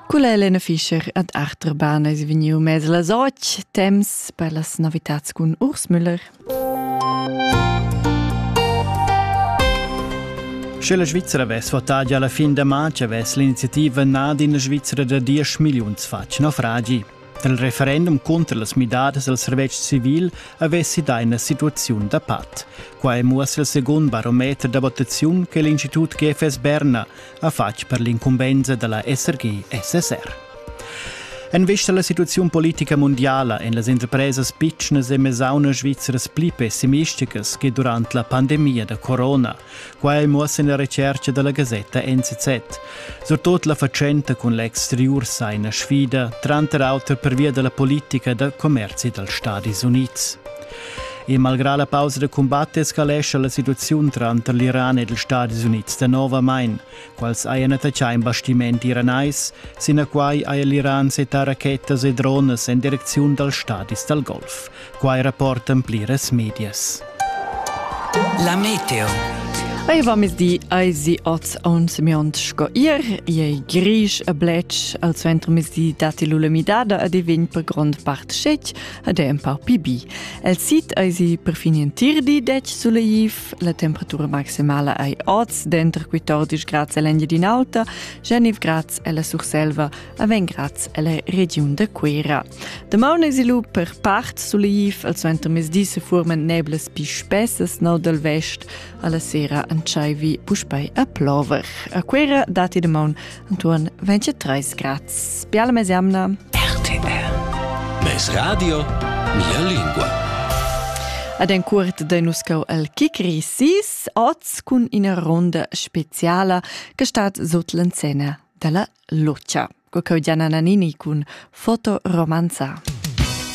Culla Elena Fischer ad Achterbahn es vegniu mez las otg temps per las novitats cun Urs Müller. Sche la Svizzera vess votà già la fin da matg, avess l'iniziativa nà d'ina Svizzera da diesch milliuns fatg naufragi. Dal referendum cunter las midadas al servetsch civil avessi dà ina situaziun da pat. Qua è muossa il secund barometer da votaziun che l'Institut GFS Berna ha fatg per l'incumbensa da la SRG-SSR. En vista alla situazione politica mondiale en las interpresas pitschnas e mesaunas svizzeras pli pessimisticas che durante la pandemia da corona, quai muossa la recerca della Gazzetta NZZ. Surtut la fatschenta cun l'exterior sai una sfida, tranter auter per via della politica da commerci dals Stati Uniti. E malgrà la pausa da cumbat escalescha la situaziun tranter l'Iran ed ils Stadis Unids danovamain. Quals hajan attaccà in bastimenti iranais, sinaquai haja l'Iran settà rachetas e dronas en direcziun dals stadis dal Golf. Quai rapportan pliras medias. La meteo. Ei va mezdi ei si oz ons miont sco ir, ei grisch e blech, al suenter mezdi datti l'ulemidada e divin per grond part schetg, ed è empau pli bi. El sit eisi perfin in tir di dec suleiv, la temperatura maximala ei oz denter 14 grads e l'Engiadin'Alta, 19 grads e la Surselva a 20 grads e la regiun da Cuera. Damaun eisi lu per part suleiv, al suentermezdi se furmen neblas pi spessas no dal vest, alla sera entscheivi puspei a plover. A Cuera dati damaun Anton, 23 grad. Biala mes jamna. RTR. Mes radio, mia lingua. Ad en curt da nuscau al Kikri sis oz cun ina ronda speciala che stat sot l'encena dalla Lucia. Co Gianna Nannini cun Fotoromanza.